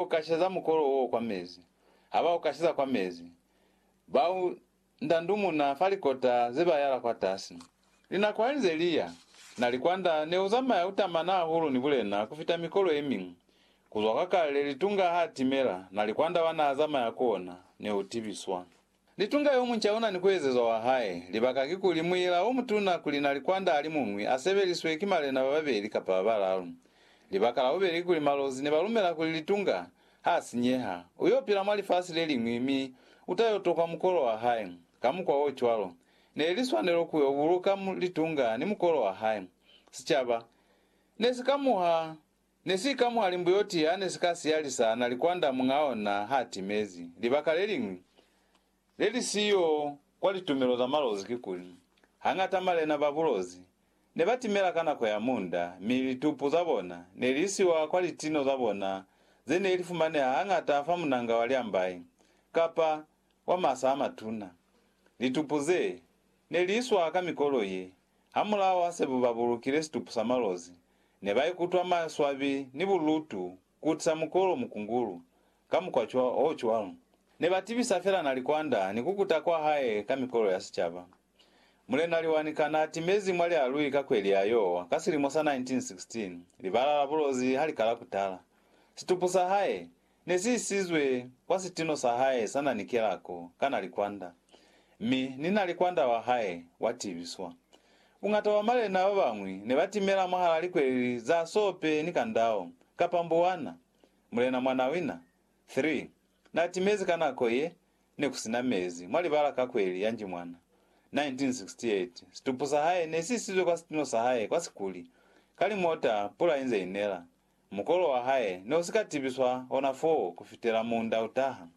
Ku kashiza mukolo wo kwa mezi. Ha ba u kashiza kwa mezi, ba u ndandumuna fa likota ze ba yala kwatasi. Linako ha li nze li ya, na likwanda ne u zamaya u tamana hahulu ni bulena ku fita mikolo ye miñwi. Ku zwa kwa kale, litunga ha a timela, na likwanda wa n'a zamaya ku ona ne u tibiswa. Ni tunga yomunca ona ni kuezezwa wa hae. Libaka kikuli, muila omutuna kuli na likwanda alimuñwi a sebeliswe ki malena bababeli kapa babalalu. Libaka labubeli kikuli malozi ne ba lumela kuli litunga, ha sinyeha, u yo pila mwa lifasi leliñwi mi u ta yo tokwa mukolo wa hae. Ka mukwa o cwalo, ne li swanelo ku yo buluka litunga ni mukolo wa hae. Sicaba ne si ka muha Ne si ka mwa limbuyoti ya ne si ka siyalisa na likwanda muñ'a ona ha timezi. Libaka le liñwi le li siyo kwa litumelo za malozi kikuli, hañata malena ba bulozi ne ba timela ka nako ya munda, mi litupu za bona ne li isiwa kwa litino za bona ze ne li fumaneha hañata fa munanga wa liambai kapa wa masa a matuna. Litupu ze ne li iswa ka mikolo ye Hamulaho ha sebuba bulukile situpu sa malozi, nebaikutwa maswabi ni bulutu kutisa mukolo mukungulu ka mukwa o cwalo. Nebatibisa fela Nalikwanda ni kukuta kwa hae ka mikolo ya sicaba. Mulena Liwanika naatimezi mwa lialui ka kweli ya Yowa ka silimo sa 1916, libala la bulozi halikala kutala. Situpu sa hae, Ne si isizwe kwa sitino sa hae sa na ni kelako ka na likwanda, mi ni na likwanda wa hae wa tibiswa. Bungata bwa malena ba bañwi ne ba timela mwahala likweleli za sope ni kandao, kapa mbuwana. Mulena Mwanawina, 3, na timezi ka nako ye ne ku si na mezi mwa libala ka kweli ya Njimwana, 1968. Situpu sa hae ne si isizwe kwa sitino sa hae kwa sikuli, ka limota pula inze inela, Mukolo wa hae ne u si ka tibiswa ona foo ku fitela muunda u taha.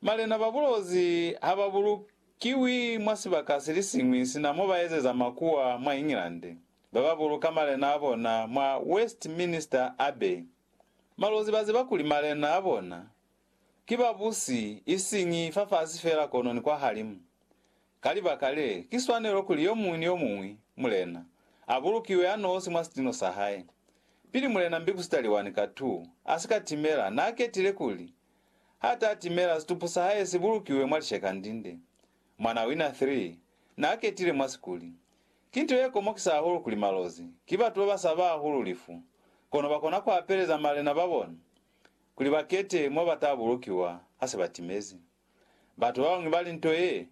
Malena ba bulozi ha ba bulukiwi mwa sibaka se li siñwi sina mo ba ezeza makuwa mwa England, ba ba buluka malena a bona mwa Westminster Abbey. Malozi ba ziba kuli malena a bona ki babusi isiñi fafasi feela kono ni kwahalimu. Ka libaka le, ki swanelo kuli yo muñwi ni yo muñwi, mulena, a bulukiwe a nosi mwa sitino sa hae. Pili mulena Mbikusitaliwani ka tu a si ka timela, n'a ketile kuli ha ta timela situpu sa hae si bulukiwe mwa lishekandinde. Mwan'a Wina 3 n'a ketile mwa sikuli. Ki nto ye komokisa hahulu kuli malozi ki batu ba ba saba hahulu lifu, kono ba kona ku apeleza malena ba bona kuli ba kete mo ba ta bulukiwa ha se ba timezi. Batu babañwi bali nto ye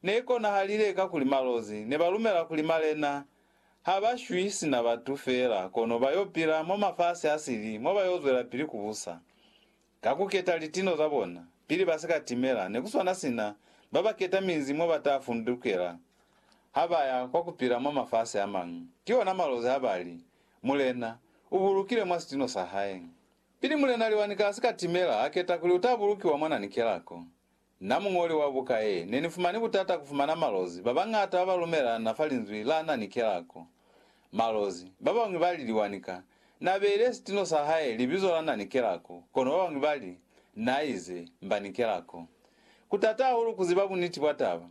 ne ikonahalile kakuli malozi ne ba lumela kuli malena ha ba shwi sina batu feela kono ba yo pila mwa mafasi a sili mo ba yo zwelapili ku busa ka ku keta litino za bona pili ba si ka timela ne ku swana sina ba ba keta minzi mo ba ta fundukela ha ba ya kwa ku pila mwa mafasi a mañwi. Ki ona malozi ha ba li, Mulena u bulukile mwa sitino sa hae. Pili Mulena Liwani ka si ka timela ha keta kuli uta bulukiwa mwa nani kelako. Na muñoli wa buka ye, ne ni fumani butata ku fumana malozi ba bañata ba ba lumelana fa linzwi la nani kelako. Malozi, ba bañwi ba li Liwani ka na beile sitino sa hae libizo la nani kelako, kono ba bañwi ba li, Na ize, mba ni kelako. Ku tata hahulu ku ziba buniti bwa taba.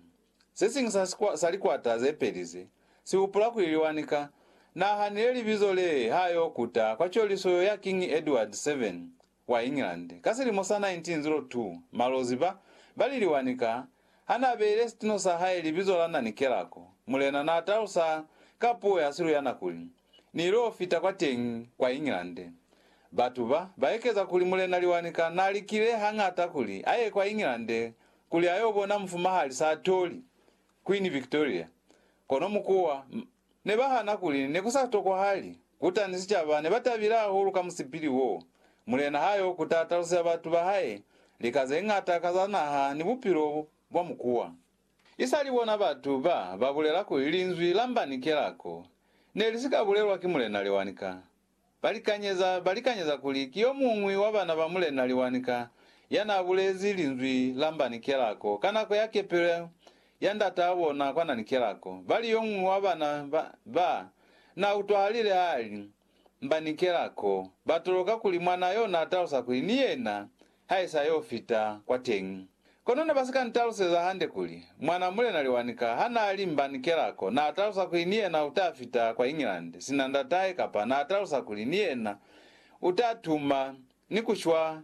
Se siñwi sa sikwa, sa likwata ze peli ze, si hupula kuli liwanika. Nahanile libizo lee ha yo kuta kwa coliso yo ya Kiñi Edward 7 wa England, ka silimo sa 1902, malozi ba, ba li liwanika, ha na beile sitino sa hae libizo la Nani Kelako, mulena na talusa ka puo ya Siluyana kuli, Ni ilo fita kwa teñi, kwa England. Batu ba, ba ekeza kuli mulena Liwanika na likile hañata kuli a ye kwa England kuli a yo bona mufumahali sa toli, Queen Victoria, kono mukuwa m ne ba hana kuli ne ku sa tokwahali. Kuta ni sicaba ne ba tabile hahulu ka musipili wo. Mulena ha yo kuta taluseza batu ba hae lika ze ñata ka za naha ni bupilo bwa mukuwa. I sa li bona batu ba ba bulela kuli linzwi la mba ni kelako ne li si ka bulelwa ki mulena Lewanika, Balikanyeza balikanyeza kuli ki yomuñwi wa bana ba Mulena Liwanika yanaabulezi linzwi la Mbani Kelako ka nako ya kepelo ya ndataa bona kwa Nani Kelako. Bali yomuñwi wa bana ba ba nautwahalile haali, Mbani Kelako, batoloka kuli mwanaa yona atalusa kuli ni yena haisa yo fita kwa teñi. Kono ne ba si ka ntaluseza hande kuli, Mwan'a Mulena Liwanika ha n'a li Mbanikela ko, n'a talusa kuli ni yena u ta fita kwa England sina ndat'ahe kapa n'a talusa kuli ni yena u ta tuma ni ku shwa